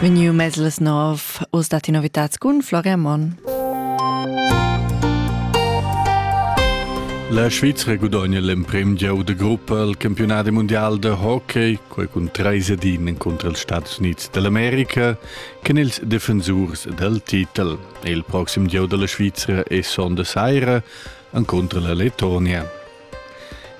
Vegniu mez las nov, oz dat ti novitats cun Florian Monn. La Svizra gudogna l'emprim gieu de gruppa al campionat mundial de hockey, quei cun trei sedin encontro els Staats Units dell'America, che ils defensurs del titel. E il proxim gieu della Svizra è sonda saira encontro la Letonia.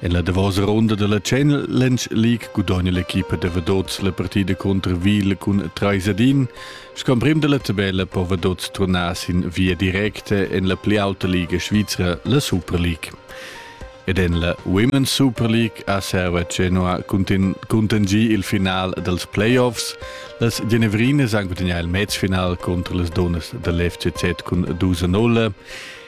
En la davosa ronda della Challenge League gudogna l'equipa da Vadots la partida contro Ville cun 3 ad 1. Scomprimm della tabella po Vadots turnar sin via directa en la pli auta liga svizra, la Super League. Ed en la Women's Super League a Serva Genoa contingì il final dels playoffs. Las Genevrines han gudagnà il matchfinal contro les Donas dell'FCZ cun 2-0.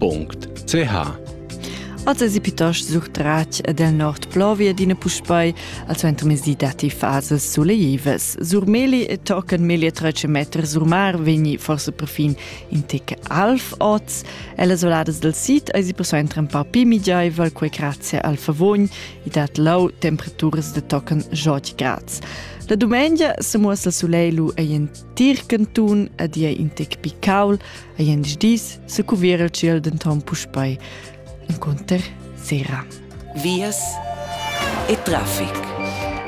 .ch Az esi pitost surtratg ed el nord plovia d'ina puspei al suentermezdi datti fasas suleivas. Sur Meli e tochen melia 13 meter sur mar vegni forse perfin in tec alv oz. E las oladas del sid esi persuenter un po più migeivel, quei grazie al favogn e dat lau temperaturas de tochen 8 grads. La domenica se muossa il soleil lu ei in Tir cantun ad ia in tec picaul, a jens dis se cuvir il ciel denton puspei. Inconter sera. Vias e traffic.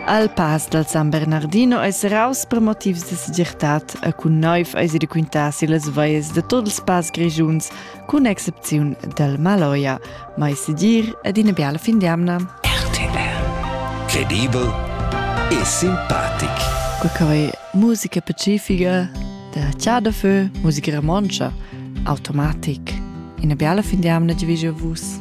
Al pass dal San Bernardino es raus per motivs de segirtad a cun noiv eis de quintar si las veies de tots els pass grigiuns cun excepziun del Maloja, mai sedir ed ina biala fin d'amna. RTR Credibel e simpatic. Quei musica pacifica da Chà da Fö, musica romontscha, automatic. Ina biala fin d'amna di vegio vus.